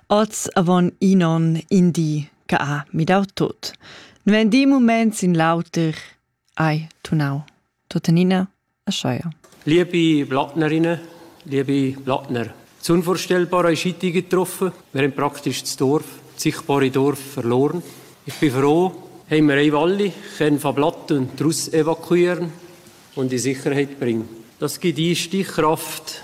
Oz avon in onn in di che ha midau tot. Nu ein di moments in l'auter hai tunau. Tuttenina aschia. Liebe Blattnerinnen, liebe Blattner, das Unvorstellbare ist heute getroffen. Wir haben praktisch das Dorf, das sichtbare Dorf verloren. Ich bin froh, haben wir alle können von Blatten und Russ evakuieren und in Sicherheit bringen. Das gibt die Stichkraft,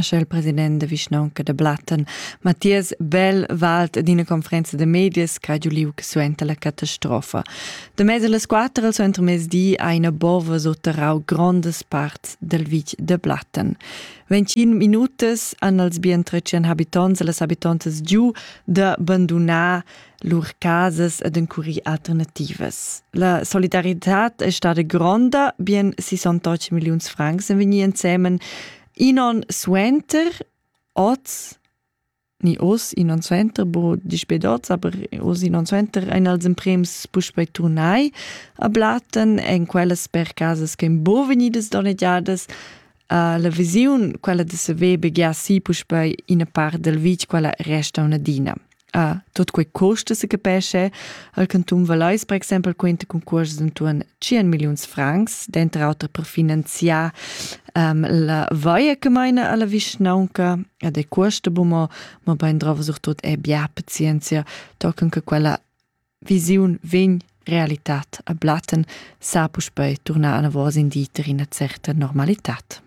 Sche il president da vischnaunca da Blatten, Mathias Bell, valt d'ina conferenza da medias ch'ha giu liug suenter la catastrofa. Da mez las quatter al suentermezdi ha ina bova sotterrau grondas parts del vitg da Blatten. Ventschin minutas han els bien tretschen habitonts e las habitontas giu da bandunar lur casas ed encurir alternativas. La solidaritad è stata gronda, bien 68 milliuns francs en vegnir ensemen in on suenter, oz, ni oz in on suenter, bo dispet oz, aber oz in on suenter, ein als emprems puspei turnai a Blatten, en quellas per casas che ein bo vegnidas donnegiadas, Uh, la visiun, quella de saver begiar si puspei ina part del vitg, quella resta un'adina. Uh, tot quei costa se capesce, al canton Valais, per exempel, quenta concurs intorno 100 milions francs, dentro auter per finanziar um, la vaia che meina alla vischnaunca, ed è costa, ma, ma ben drova sur tot è bia pazienzia, tocan che quella Visiun vegn, realitad a Blatten sa puspei turnar anavos in dieter ina certa normalitad.